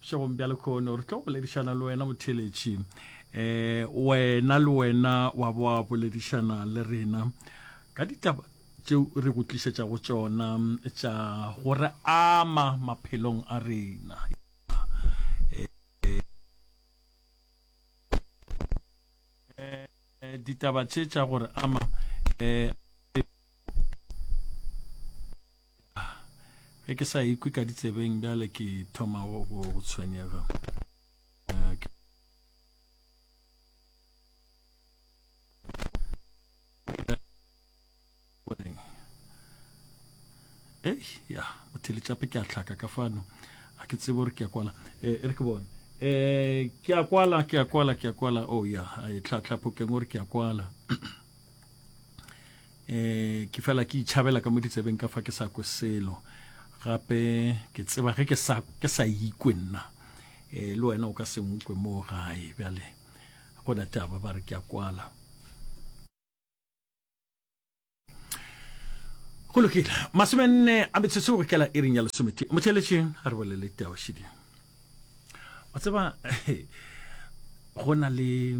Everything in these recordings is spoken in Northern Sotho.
Šegong bja lekhono re tlo boledišana le wena motheletši um wena le wena wa boa boledišana le rena ka ditaba tšeo re go tlišetšago tšona tša go re ama maphelong a rena eh, ditaba tše tša gore ama um A, ge ke sa ikwi ka ditsebeng bjale ke thoma go, go, go tshwenyega. A, ke... Ei, ya, botheletšape ke a tlhaka ka fano. A ke tsebe gore ke a kwala. E, e re ke bone. E, ke a kwala, ke a kwala, ke a kwala. Oh, ya, e tlhatlhapokeng gore ke a kwala. E, ke fela ke itšhabela ka mo ditsebeng ka fa ke sa kwe selo gape ke tseba ge ke sa ke sa ikwe nna e, le wena o ka se nkwe moo gae bjale go na taba ba re ke a kwala go lokile masomenne a metsotso go kela e reng ya lesomete motheletšeng a re bolele teo šidi wa tseba go na le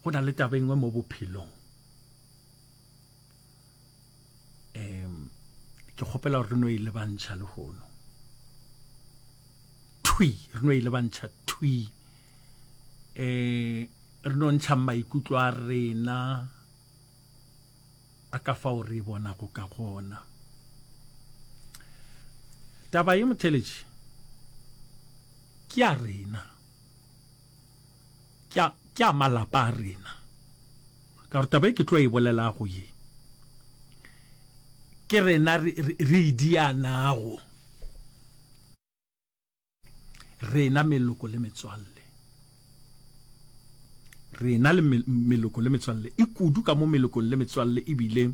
go na le taba engwe mo bophelong um ke kgopela gore re no e lebantšha le gono thwi re no e lebantšha thwi um re no ntšha maikutlo a rena a ka fao re bona go ka gona taba ye motheletši ke ya rena Ke a, ke a malapa a rena. Ka gore taba e ke tlo e bolelago ye, ke rena re, re, re e dianago, rena meloko le metswalle. Rena le meloko le metswalle, e kudu ka mo melokong le metswalle e bileng,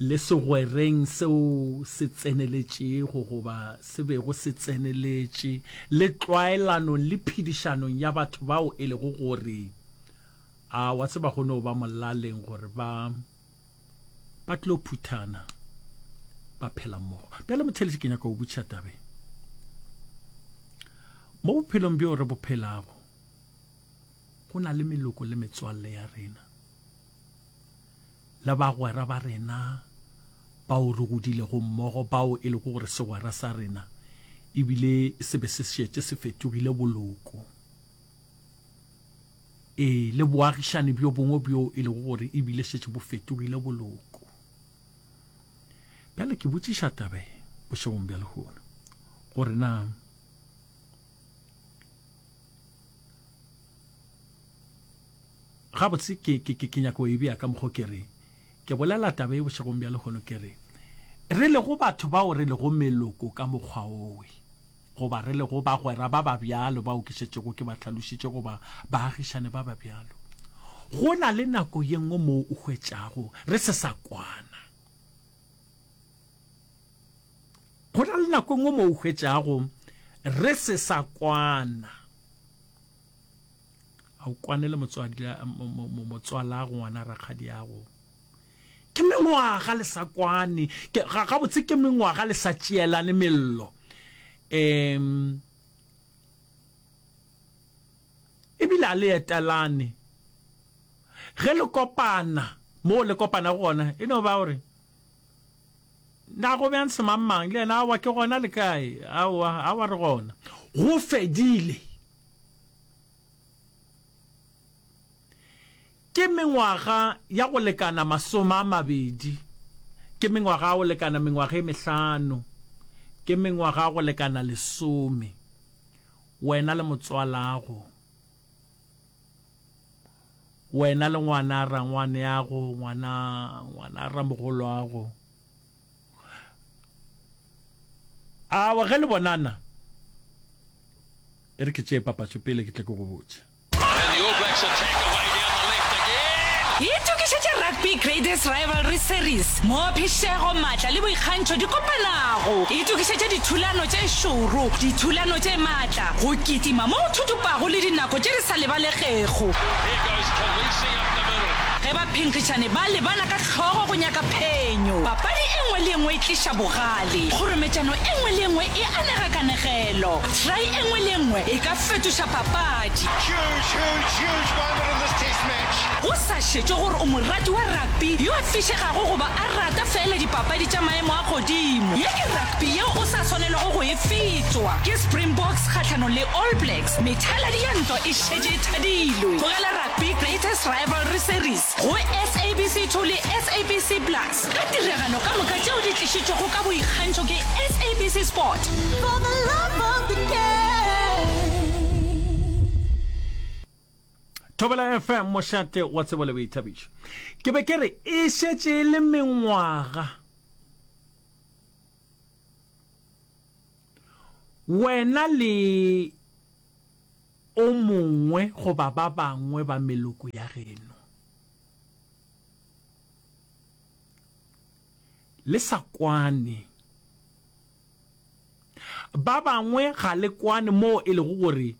le segwereng seo se tseneletšego goba se bego se tseneletše, le tlwaelanong le phedišanong ya batho bao e lego gore, a wa tseba go no ba molaleng gore ba ba tlo phuthana ba phela mmogo. Bjale motheletši, ke nyaka go butša tabe mo bophelong bjo re bo phelago, go na le meloko le metswalle ya rena. le bagwera ba rena bao re godilego mmogo, bao e lego gore segwera sa rena e bile se be se šetše se fetogile boloko. Ee, le boagišani bjo bongwe bjo e lego gore e bile šetše bo fetogile boloko. Bjale ke botšiša tabe bošegong bja lehono gore na Gabotse, ke, ke, ke, ke nyaka go e bea ka mokgwa o ke re, ke bolela taba ye bošegong bja lehono, ke re, re lego batho bao re lego meloko ka mokgwa owe, goba re lego bagwera ba ba bjalo bao ke šetšego ke ba hlalošitše, goba baagišane ba ba bjalo, go na le nako ye nngwe moo o hwetšago re se sa kwana. Go na le nako e nngwe moo o hwetšago re se sa kwana. a o kwane le motswala go ngwana rakgadi yago ke mengwaga le sa kwane ga botse ke mengwaga le sa tšeelane mello um ebile a le etelane ge le kopana mo le kopana go gona e no ba gore na go bjang semangmang le yena awa ke gona le kae awa awa re gona go fedile Ke mengwaga ya go lekana masome a mabedi. Ke mengwaga ya go lekana mengwaga e mehlano. Ke mengwaga ya go lekana lesome. Wena le motswalago. Wena le ngwana rangwaneago, ngwana, ngwana ramogoloago. Awa ge le bonana, e re ke tšee papatšo pele ke tle ke go botše. Itokišetše Rugby Graders Rivalry Series mo phišego, matla le boikgantšho di kopanago. Itokišetše dithulano tše šoro, dithulano tše matla, go kitima mo go thuthupago le dinako tše di sa lebalegego. Ge baphenkgišani ba lebana ka Hlogo go nyaka phenyo. Papadi e nngwe le e nngwe e tliša bogale. Kgorometšano e nngwe le e nngwe e anega kanegelo. Try e nngwe le e nngwe e ka fetoša papadi. Huge, huge, huge moment in this Test match. Go sa šetšwe gore o morati wa rugby yo a fišegago goba a rata feela dipapadi tša maemo a godimo, ye ke rugby yeo o sa swanelwago go e fetšwa. Ke Springboks kgahlanong le All Blacks, methaladi ya ntwa e šetše e thadilwe. Tlogela Rugby Greatest Rivalry Series. go sabc two le sabc plus ka tiragalo ka moka tšeo di tlišitšwego ka boikgantšho ke sabc sport For the love of the thobela fm mošate wa tsebo le boithabišo ke be ke re e šetše e le mengwaga wena le o mongwe goba ba bangwe ba meloko ya geno le sa kwane. Ba bangwe ga le kwane moo e lego gore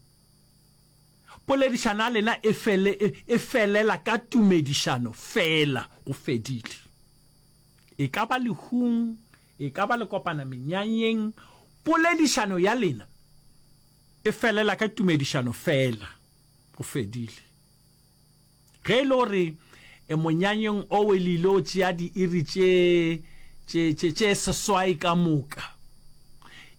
poledišano ya lena e, fele, e, e felela ka tumedišano fela, go fedile. E ka ba lehung, e ka ba le kopana menyanyeng, poledišano ya lena E felela ka tumedišano feela. Go fedile. Ge e le gore e monyanyeng o e lilo tšea diiri tše, tše, tše, tše seswai ka moka,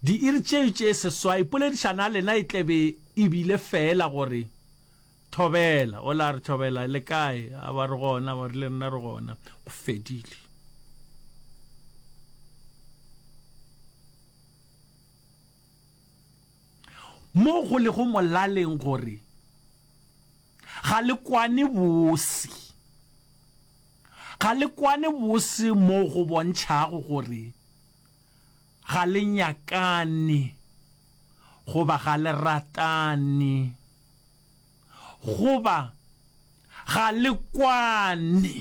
diiri tšeo tše seswai, poledišano ya lena e tlebe e bile feela gore, Thobela. O la re, Thobela, le kae? A ba re gona, ba re le rena re gona. Go fedile. Mo go lego molaleng gore ga le kwane bose. Ga le kwane bose mo go bontšhago gore ga le nyakane goba ga le ratane goba ga le kwane.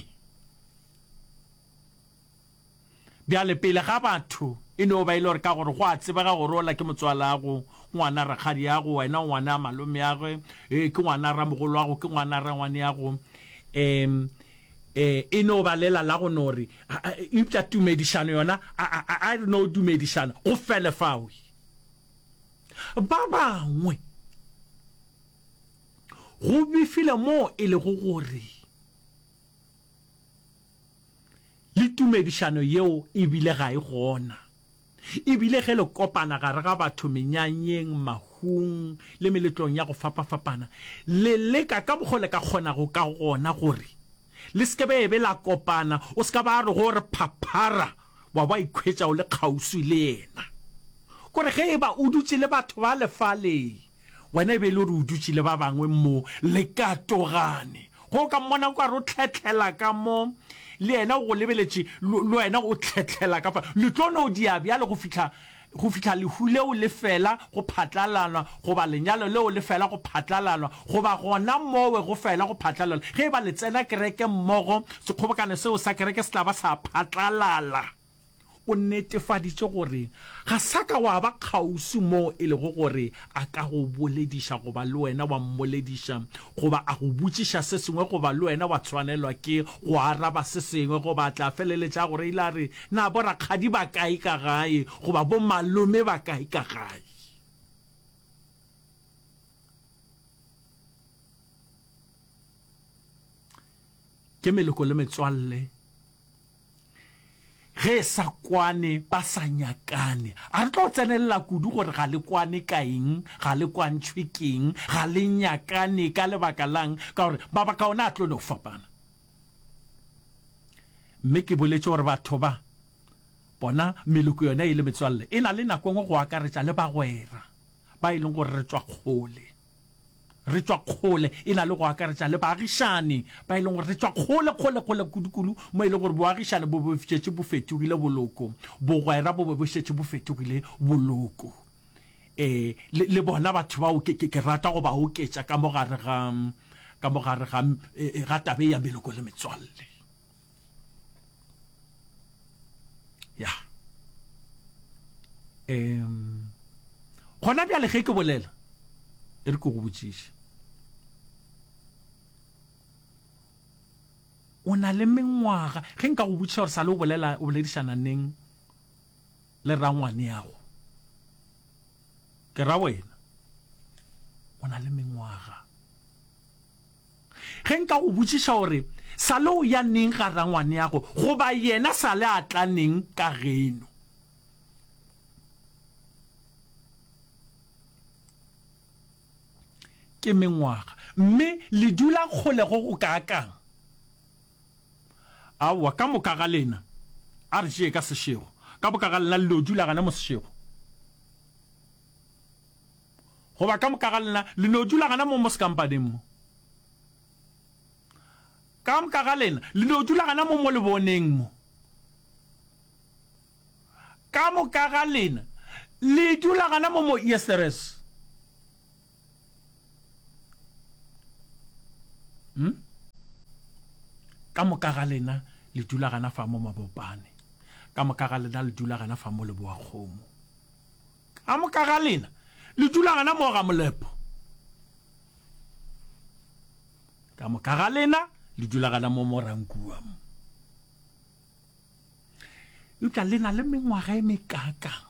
Bjale, pele ga batho, e no ba e le gore ka gore go a tsebega gore ola ke motswalago, ngwana rakgadiago, wena o ngwana malomeagwe, ee, ke ngwana ramogolwago, ke ngwana rangwaneago, e, e, e no ba lela la go no re, a, a, eupša tumedišano yona, a, a, a, a re no dumedišana, go fele fao. Ba bangwe go befile moo e lego gore. Le tumedišano yeo e bile ga e gona. E bile ge le kopana gare ga batho menyanyeng, mahung le meletlong ya go fapafapana, le leka ka mokgo le ka kgonago ka gona gore le se ke be be la kopana. O se ka ba re go re phaphara wa ba ikhwetša o le kgauswi le yena. Gore ge e ba o dutše le batho bale fale, Wena e be e le gore o dutše le ba bangwe mo le ka togane, go o ka mmona o ka re o tlhethlela ka mo, le yena o go lebeletše, le wena o tlhethlela ka fale. Le tlo no dia bjalo go fihla, go fihla lehu leo le fela go phatlalalwa, goba lenyalo leo le fela go phatlalalwa, goba gona mowe go fela go phatlalalwa. Ge e ba le tsena kereke mmogo, sekgobokano seo sa kereke se tla ba sa phatlalala. O netefaditše gore ga sa ka wa ba kgauswi moo e lego gore a ka go bolediša goba le wena wa mmolediša goba a go botšiša se sengwe goba le wena wa tshwanelwa ke go araba se sengwe goba a tla feleletša a go reile a re, Na borakgadi ba kae ka gae goba bomalome ba kae ka gae? Ke meloko le metswalle. Ge e sa kwane ba sa nyakane. A re tlo tsenelela kudu gore ga le kwane ka eng, ga le kwantšhwe ke eng, ga le nyakane ka lebaka la'ng, ka gore mabaka ona a tlo no fapana. Mme ke boletše gore batho ba, bona meloko yona e le metswalle, e na le nako e nngwe go akaretša le bagwera ba e leng gore re tšwa kgole. re tšwa kgole e na le go akaretša le baagišani ba e leng gore re tšwa kgole, kgole, kgole kudu-kudu mo e lego gore boagišani bo be bo šetše bo fetogile boloko, bogwera bo be bo šetše bo fetogile boloko. Ee, le, le bona batho bao ke, ke, ke rata go ba oketša ka mo gare ga, ka mo gare ga, ga taba e ya meloko le metswalle. ya um gona bjale ge ke bolela e re ke go botšiše o na le mengwaga ge nka go botšiša gore sa le o bolela o boledišana neng le rangwane yago ke ra wena o na le mengwaga Ge nka go botšiša gore Sale o ya neng ga rangwaneago goba yena Sale a tla neng ka geno, ke mengwaga mme le dula kgole go go kaakang? Aowa, ka moka ga lena, a re tšee ka sešego, ka moka ga lena le no dula gane mo sešego. goba ka moka ga lena le no dula gana mo mo sekampaneng mo. Ka moka ga lena le no dula gana mo mo leboneng mo. Ka moka ga lena le dula gana mo mo Yesteress. Hmm? Ka moka ga lena le dula gana fa mo mabopane. Ka moka ga lena le dula gana fa mo leboa kgomo. Ka moka ga lena le dula gana moo ga molepo. Ka moka ga lena le dula gana moo mo Rankua mo. Eupša le na le mengwaga e mekakang.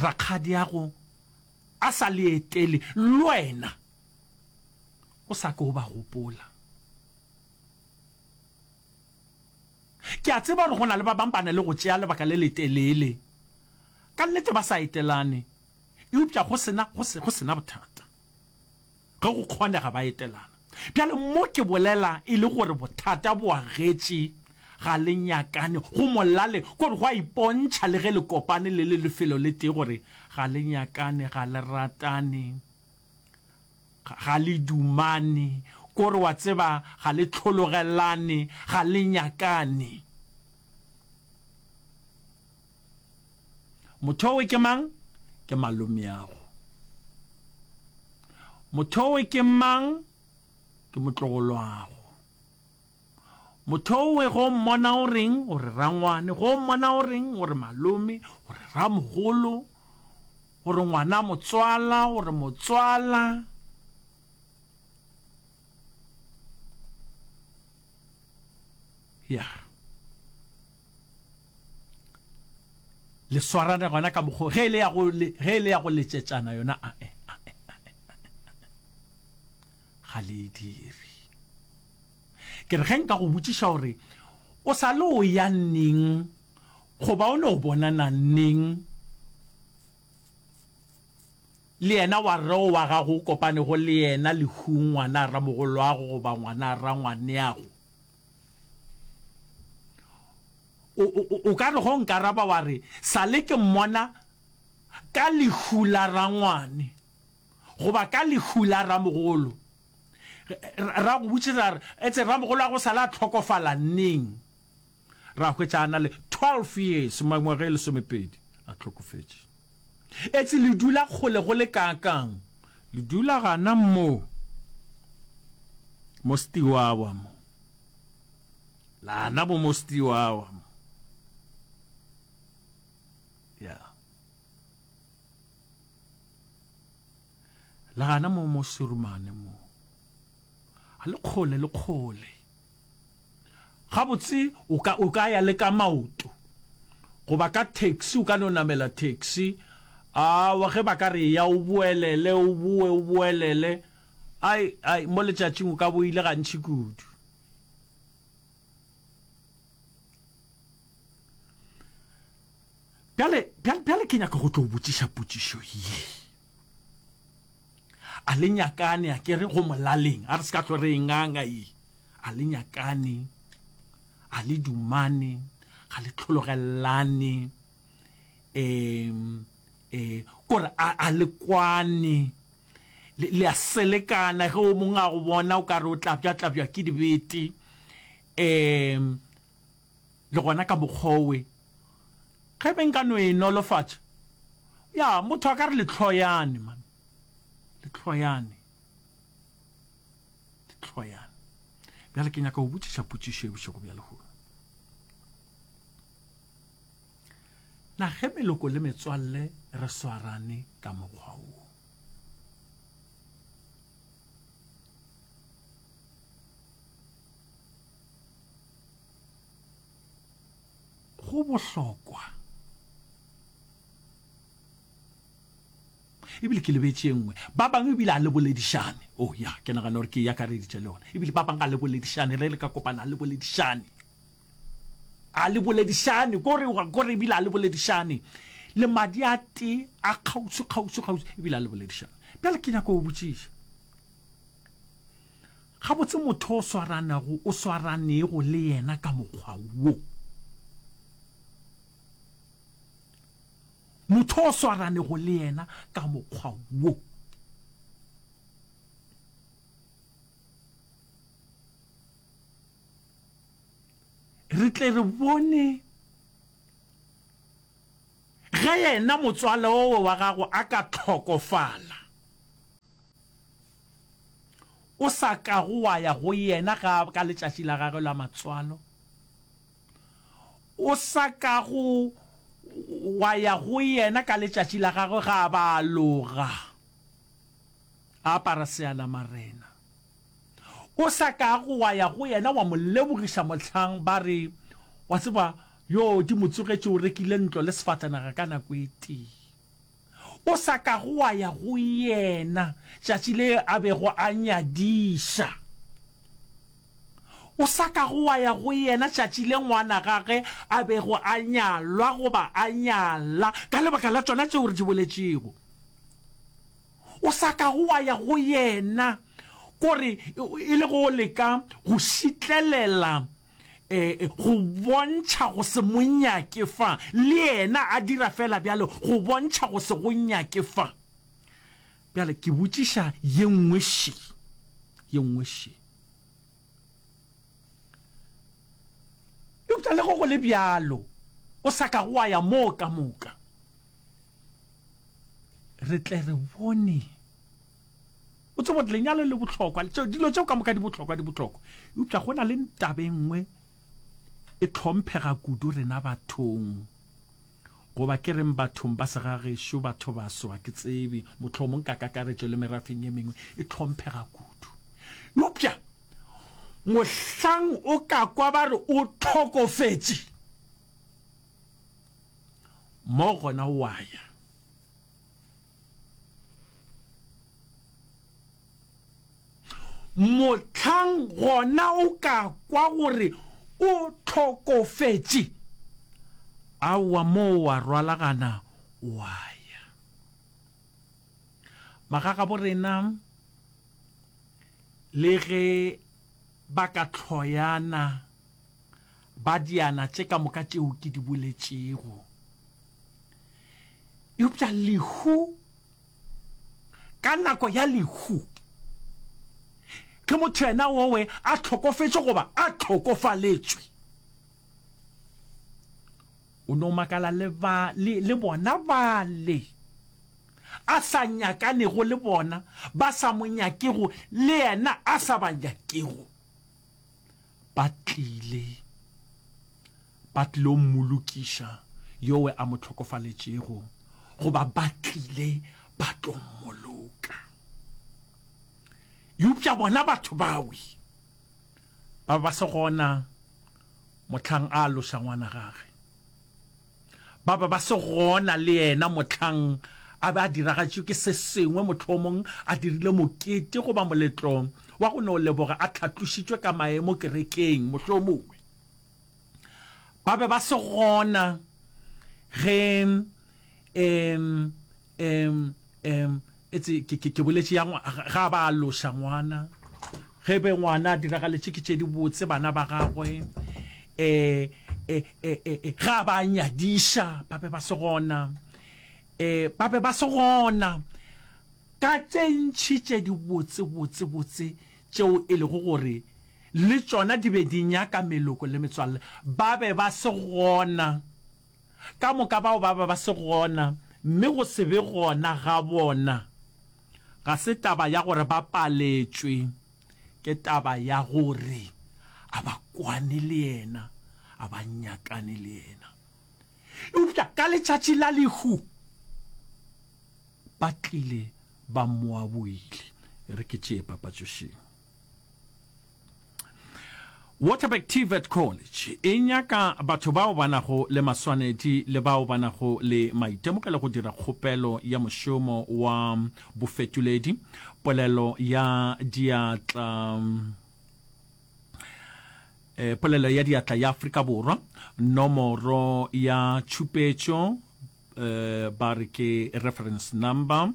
Rakgadiago a sa le etele le wena o sa ke o ba gopola. Ke a tseba gore go na le ba bangwe ba na le go tšea lebaka le letelele ka nnete ba sa etelane, eupša go se na, go se, go se na bothata ge go kgonega ba etelana. Bjale, mo ke bolela e le gore bothata bo agetše, ga le nyakane, go molale, ke gore go a ipontšha le ge le kopane le le lefelo le tee gore ga le nyakane, ga le ratane. Ga le dumane, kore wa tseba ga le tlhologelane, ga le nyakane. Motho owe ke mang? Ke malomeago. Motho owe ke mang? Ke motlogoloago. Mothowe, Go mmona o reng? O re rangwane. Go mmona o reng? O re malome. O re ramogolo. O re ngwana motswala. O re motswala. Ya. Le swarane gona ka mokgo ge e le ya go letšetšana yona a e. ga le e dire. Ke re ge nka go botšiša gore o sa le o ya neng goba o no bonana neng le yena wa rre o wa gago o kopanego le yena lehung ngwana a ramogolwago goba ngwana a rangwaneago o ka re go nkaraba wa re sa le ke mmona ka lehu la rangwane Goba ka lehu la ramogolo. Ra go botšiša a re, Etse ramogolo a go sale a hlokofala neng? Ra hwetša a na le twelve years, mangwaga e lesomepedi, a hlokofetše. Etse le dula kgole go le kaakang? Le dula gana mo, mo Steaua mo. Lana bo mo Steaua mo. Yeah. Le gana mo mo Surumane mo. A le kgole le kgole. Gabotse o ka o ka ya le ka maoto. Goba ka taxi o ka no namela taxi. A wa ge ba ka re ya o boelele o boe o boelele. Ai ai mo letšatšing o ka bo ile gantši kudu. Bjale, bjale, bjale ke nyaka go tlo botšiša potšišo ye. A le nyakane, a kere go molaleng, a re se ka tlore e nganga ye. A le nyakane, a le dumane, ga le tlhologelelane, um, eh, kore a, a le kwane, le, le a selekana, ge o mongwe a go bona o ka re o tlabja, tlabjwa ke dibete, um, Le gona ka mokgwa owe, ge be nka no e nolofatša, ya, motho a ka re, Lehloyane, man. Lehloyane. Lehloyane. Bjale ke nyaka go botšiša potšišo e bošego bja lehono. Na ge meloko le metswalle re swarane ka mokgwa wo, Go bohlokwa. ebile ke lebetse nngwe ba bangwe ebile a le boledišane o oh, ya ke nagana gore ke ya ka reditše le yone ebile ba bangwe a le boledišane re le ka kopana a le boledišane a le boledišane kore kore ebile a le boledišane le madi a te a kgauswi kgauswi kgauswi ebile a le boledišane pele ke nyako go botšiša Gabotse motho o swaranago o swaranego le yena ka mokgwa wo. Motho o swaranego le yena ka mokgwa wo. Re tle re bone ge yena motswala owe wa gago a ka hlokofala. o sa kago wa ya go yena ga ka letšatši la gagwe la matswalo, o sa kago wa ya go yena ka letšatši la gagwe ga ba loga a apara sealamarena, o sa kago wa ya go yena wa mo lebogiša mohlang ba re wa tseba yo di mo tsogetše o rekile ntlo le sefatanaga ka nako e tee. o sa kago wa ya go yena tšatši le a bego a nyadiša, o sa kago wa ya go yena tšatši le ngwana gage a bego a nyalwa goba a nyala ka lebaka la tšona tšeo re di boletšego, o sa kago wa ya go yena gore e le go leka go šitlelela go bontšha go se mo nyake fa le yena a dira fela bjalo, go bontšha go se go nyake fa. Bjale ke botšiša ye nngwe še, ye nngwe še. Eupša le go go le bjalo, o sa ka go a ya moo ka moka. Re tle re bone. O tsebo gore lenyalo le bohlokwa, dilo tšeo ka moka di bohlokwa, di bohlokwa. Eupša go na le taba e nngwe e tlhomphega kudu rena bathong, goba ke reng bathong ba segagešo, batho baso, ga ke tsebe, mohlomong ka kakaretšo le merafeng e mengwe, e tlhomphega kudu. Eupša mohlang o ka kwa ba re o tlhokofetše, mo gona wa ya. Mohlang gona o ka kwa gore o hlokofetše, aowa moo wa rwalagana wa ya. Magagabo rena le ge ba ka hloyana ba diana tše ka moka tšeo ke di boletšego, eupša lehu ka nako ya lehu ke motho yena owe a tlhokofetše goba a tlhokofaletšwe o no makala le, ba, le, le bona bale a sa nyakanego le bona ba sa mo nyakego le yena a sa ba nyakego ba tlile, ba tlilo mmolokiša yowe a mo tlhokofaletšego, goba ba tlile ba tlo mmoloka. Eupša bona batho bawe ba ba se gona mohlang a loša ngwana gage. Ba be ba se gona le yena mohlang a be a diragatšwe ke se sengwe, mohlomong a dirile mokete goba moletlo wa go no leboga a tlhatlošitšwe ka maemo kerekeng, mohlomongwe ba be ba se gona ge e Em, em, etse, ke, ke, ke boletše ya ngwa, ga- ga ba a loša ngwana. Ge be ngwana a diragaletše ke tše dibotse bana ba gagwe, e, e, e, e, e, ga ba a nyadiša, ba be ba se gona. E, ba be ba se gona. Ka tše ntši tše dibotse, botse, botse, tšeo e lego gore le tšona di be di nyaka meloko le metswalle, ba be ba se gona. Ka moka bao ba be ba se gona, mme go se be gona ga bona ga se taba ya gore ba paletšwe, ke taba ya gore a ba kwane le Yena, a ba nyakane le Yena. Eupša ka letšatši la lehu ba tlile ba Moaboile. E re ke tšee papatšošeng. Waterberg TVET College e nyaka batho bao ba nago le maswanedi le bao ba nago le maitemogelo go dira kgopelo ya mošomo wa bofetoledi polelo ya diatla eh, polelo ya diatla ya Afrika Borwa nomoro ya tšhupetšo eh, ba re ke reference number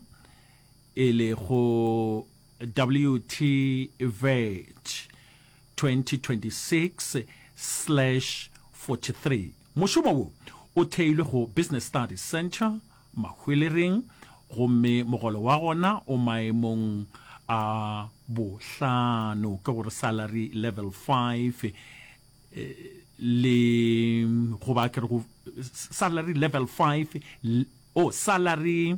e lego WTVET2026/43 Mošomo wo o theilwe go Business Studies Centre Mahwelereng gomme mogolo wa gona o maemong a bohlano, ke go re salary level five, le go ba ke re go salary level five, oh salary.